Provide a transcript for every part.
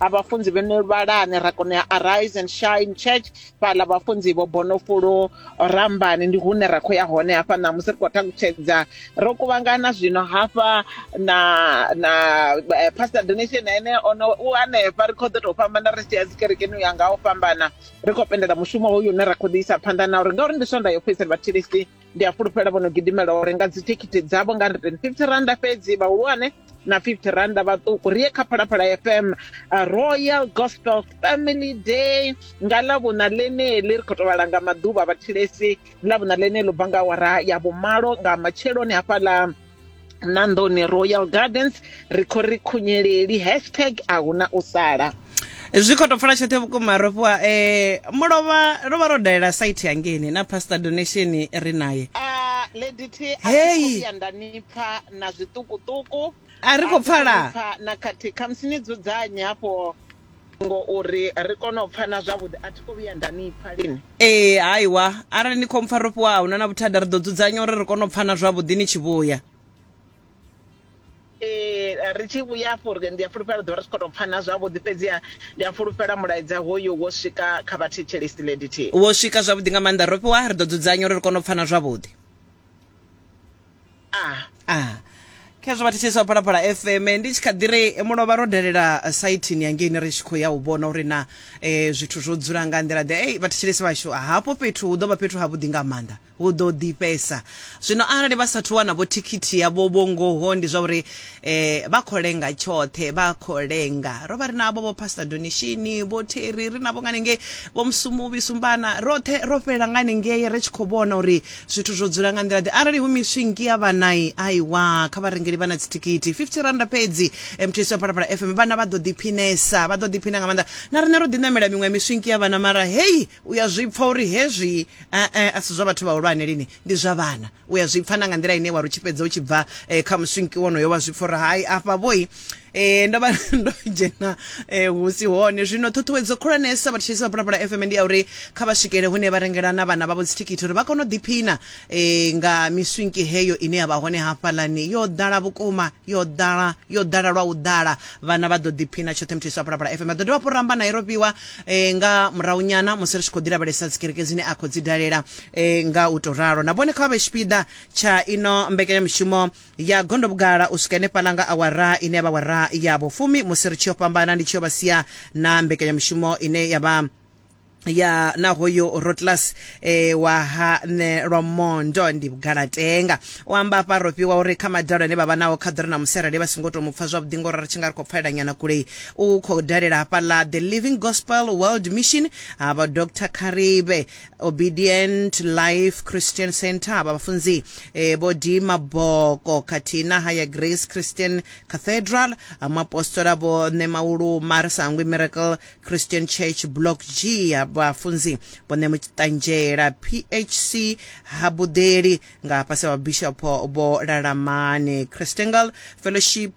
a vhafunzi vho no vhalani ra kona ya arise and shine church fhaḽa vhafunzi vho bonofulo rambani ndi hune ra khou ya hone hafha na musi ri khou ṱalutshedza ro kuvhangana zwino hafha na na eh, pastor donation ene ono u hanefha ri khou ḓo tou fhambana ri tshi ya dzikerekeni u ya nga u fhambana ri khou pendela mushumo hoyu une ra khou ḓi isa phanḓa na uri ngauri ndi swonda yo fhedzisela vhathilisi ndi a fhulufhela vho no gidimela u renga dzithikhithi dzavho nga 150 randa fhedzi vhahulwane na 50 randa vhaṱuku ri ye kha phalaphala fm uh, royal gospel family day nga ḽavhuna ḽeneḽi ri khou tou vhalanga maḓuvha vhathilesi ḽavhuna ḽeneḽi u bva nga awara ya vhumalo nga matsheloni hafhaḽa na nḓoni royal gardens ri khou ri khunyeleli hashtag a hu na u sala zwi khou tou pfala tshoṱhe vhukuma ro fhiwa um mulovha ro vha ro dalela site yangeni na pastor donation ri naye Ah, lady t a Hey. thi khou vhuya nda nipfa na zwiṱukuṱuku A ri khou thi khou pfala. nipfa na khathihi khamusi ni dzudzanye hafho Ngo uri ri kone u pfana zwavhuḓi. A thi khou vhuya nda ni pfa lini. Ee, haiwa. Arali ni khou mpfa ro fhiwa, a hu na na vhuthada. Ri ḓo dzudzanya uri ri kone u pfana zwavhuḓi ni tshi vhuya. Ee, ri tshi vhuya afho, ri, ndi a fhulufhela ri ḓo vha ri tshi khou tou pfana zwavhuḓi. Fhedziha ndi a fhulufhela mulaedza hoyu wo swika kha vhathetshelesi Lady T. Wo swika zwavhuḓi nga maanḓa. Ro fhiwa, ri ḓo dzudzanya uri ri kone u pfana zwavhuḓi. ah khezwo vhathetshelesi vha phalaphala fm ndi tshi kha ḓi ri mulovha ro dalela eh, saithini yangeini ri tshi khou ya u vhona uri na eh, zwithu zwo dzula nga nḓila ḓe ei vhathetshelesi vhashu ah, hafho fhethu hu ḓo vha fhethu havhuḓi nga maanḓa hu ḓo ḓifhesa zwino arali vha sathu wana vho thikhithi yavho vho ngoho ndi zwa uri eh vha khou lenga tshoṱhe vha khou lenga ro vha ri navho vho pastor donishini vho theri ri navho nga ningei vho musumuvi sumbana roṱhe ro fhelela nga ningei ri tshi khou vhona uri zwithu zwo dzula nga nḓila ḓe arali hu miswingi ya vhanai aiwa kha vharengeli vha na dzithikhithi 50 randa fhedzi eh, mthisi wa phalaphala fm vhana vha ḓo ḓiphinesa vha ḓo ḓiphina nga maanḓa na riṋe ro ḓiṋamela miṅwe ya miswingi ya vhana mara heyi u ya zwi pfa uri hezwi eh, eh, a si zwa vhathu vhahulwane lini ndi zwa vhana u ya zwi pfa na nga nḓila ine wa ri tshi fhedza u tshi bva eh, kha muswinki wonoyo wa zwi pfa uri hai afha vhoi eh, ndo vha ndo dzhena eh, hu si hone zwino ṱhuṱhuwedzo khulwanesa vhatshisi vha pulapula fm ndi ya uri kha vha swikele hune vha rengela na vhana vhavho dzithikhithi uri vha kone u ḓiphina eh, nga miswinki heyo ine ya vha hone hafhalani yo ḓala vhukuma yo ḓala yo ḓala lwa u ḓala vhana vha ḓo ḓiphina tshoṱhe mthisi wa pulapula fm vha ḓo dovha hafhu ramba na iropiwa eh, nga murahunyana musi ri tshi khou ḓilavhelesa dzikereke dzine a khou dzi dalela e, nga u tou ralo na vhone kha vha vhe tshipiḓa tsha ino mbekanyamushumo ya gondo vhugala u swika henefhaḽa nga awara ine ya vha awara ya vhufumi musi ri tshi yo fhambana ndi tshi yo vha sia na mbekanyamushumo ine ya vha ya na hoyo rotlas e, wa ha nṋe lwa mondo ndi vhugalatenga u amba afha ro fhiwa uri kha madalo ane vha vha nao kha ḓore na musi arali vha songo tou mu pfa zwavhuḓi ngori ri tshi nga ri khou pfalela nyana kule u khou dalela hafhaḽa the living gospel world mission ha vha dr karibe obedient life christian center avha vhafunzi eh, vho d maboko khathihi na haya grace christian cathedral amapostola vho ṋe mauluma ri sa hangwi miracle christian church block g vhafunzi vho ṋe mutanzhela phc ha buḓeli nga fhasi ha vhabishopo vho lalamane christangle fellowship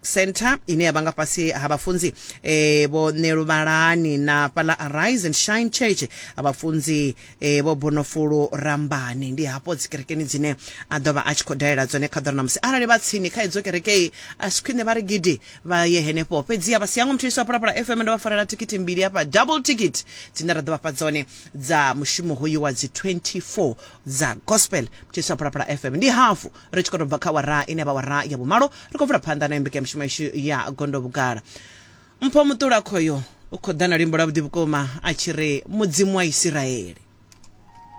Centre ine ya vha nga fhasi ha vhafunzi e, vho Neluvhalani na fhaḽa Arise and Shine Church ha vhafunzi e, vho Bonofulu Rambani. Ndi hafho dzikerekeni dzine a ḓo vha a tshi khou dalela dzone kha ḓora ṋamusi. Arali vha tsini kha idzo kerekei a si khwine vha ri gidi vha ye henefho. Fhedziha vha si yango muthethisi wa Phalaphala FM ndo vha farela thikhithi mbili hafha double ticket dzine ra ḓo vha fha dzone dza mushumo hoyu wa dzi 24 dza gospel muthethisi wa Phalaphala FM. Ndi hafu ri tshi khou tou bva kha wara ine vha wara ya vhumalo ri khou bvula phanḓa nayo mbekanyamushumo yashu ya gondo vhugala mpho muṱula khoyo u khou ḓa na limbo ḽa vhuḓi vhukuma a tshi ri mudzimu wa isiraele